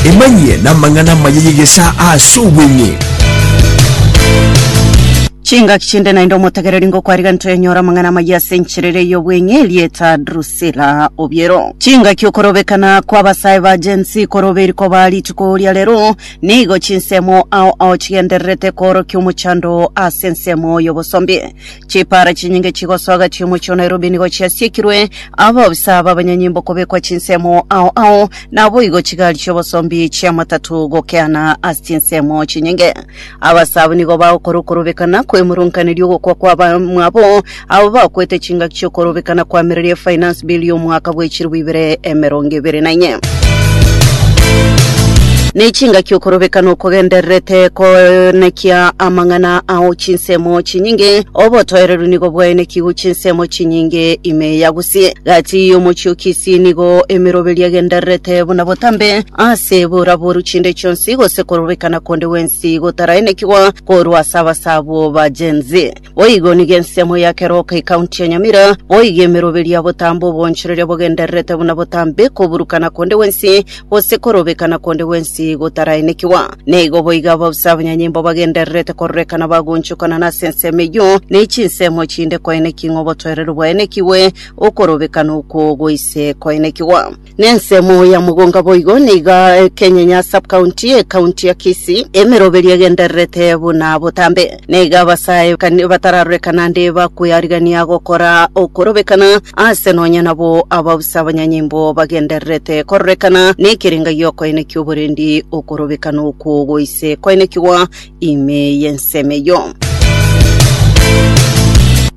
Emanyie namang'ana amaya y'egesaa ase obweng'e. Chingaki chinde naende omotegereri ngokwariga ntoyanyore amang'ana amaya ase enchera eria y'obweng'e, rieta Drusilla Obiero. Chingaki okorobekana kw'abasae ba Gen Z koroberi koba rituko ria rero, nigo chinsemo ao ao chigendererete koorokia omochando oo ase ensemo y'obosombi. Chipara chinyinge chigosoga chi'omochie o Nairobi nigo chiasiekirwe abaobisaa b'abanyanyimbo kobekwa chinsemo ao ao, naboigo chigari chi'obosombi chi'amatatu gokeana ase chinsemo chinyinge. Abasaa abwo nigo bagokora okorobekana kw'emurunkaneria ogokwa kw'abamwabo abo bakwete chingaki chi'okorobekana kw'amereri e Finance Bill y'omwaka bw'echilifu ibere emerongo ibere na inye. Nechingaki okorobeka nokogendererete koenekia amang'ana ao chinsemo chinyinge, obotoereru nigo bwaenekiwu chinsemo chinyinge ime yagusie. Gati y'omochie o Kisii nigo emeroberi egendererete buna botambe ase boraboru chinde chionsi, gose korobekana konde gwensi gotaraenekigwa korwa ase abasabwo ba Gen-Z. Boigo nigo ensemo ya Keroka ekaunti ya Nyamira, boigo emeroberi ya botambe obwonchoreria bogendererete buna botambe koburukana konde gwensi, gose korobekana konde gwensi gotaraenekigwa. Nigo boigo ababusi abanyanyimbo bagendererete kororekana bagoonchokana nase ensemo eyio, ne chinsemo chinde koenekigwa ng'a obotoereru bwaenekigwe, okorobekana okwo goise koenekigwa. Nensemo ya mogonga boigo niga ekenyenya subcounty ecounty ya Kisii emeroberio egendererete buna botambe. Niga abasae kani batararorekana naende bakweyarigania gokora okorobekana ase nonya nabo abausa abanyanyimbo bagendererete kororekana nekerenga giokoeneki oborendi okorobekana okwo goise koenekigwa ime y'ensemo eyio.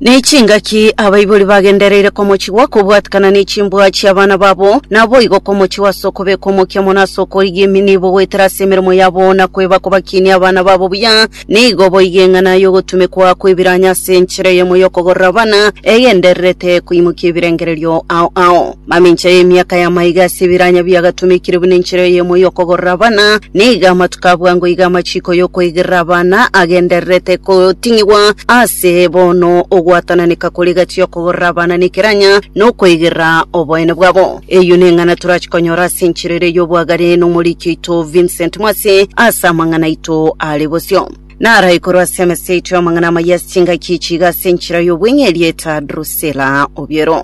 Nechingaki abaibori bagendereire komochigwa kobwatikana nechimbwa chi'abana babo, naboigo komochigwa ase okobekwa omokia mono ase okorigia emenebo goetera ase emeremo yabo na kweba kobakinia abana babo buya. Nigo boigo eng'ana y'ogotumekwa kw'ebiranyo ase enchera eyemo y'okogorora abana egendererete koimokia ebirengererio ao ao. Mamincha y'emiaka ya maiga ase ebiranya biagatomekire buna enchera eyemo y'okogorera abana, nigo amatuko a bwango iga amachiiko y'okoigerera abana agendererete goting'igwa aase bono ogwatananeka kore egati y'okogorera abana nekeranya na okoigerera oboene bwabo. Eyio neng'ana torache konyora ase enchera ere y'obwagare n'omoriki oito Vincent Mwase ase amang'ana aito are bosio. Narae korwa ase emesa yaito y'amang'ana amayia ase chingaki echi iga ase enchera y'obweng'eria eta Drusilla Obiero.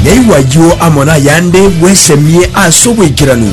Yaigwa ayio amo nayande bwesemie ase obwaikeranu.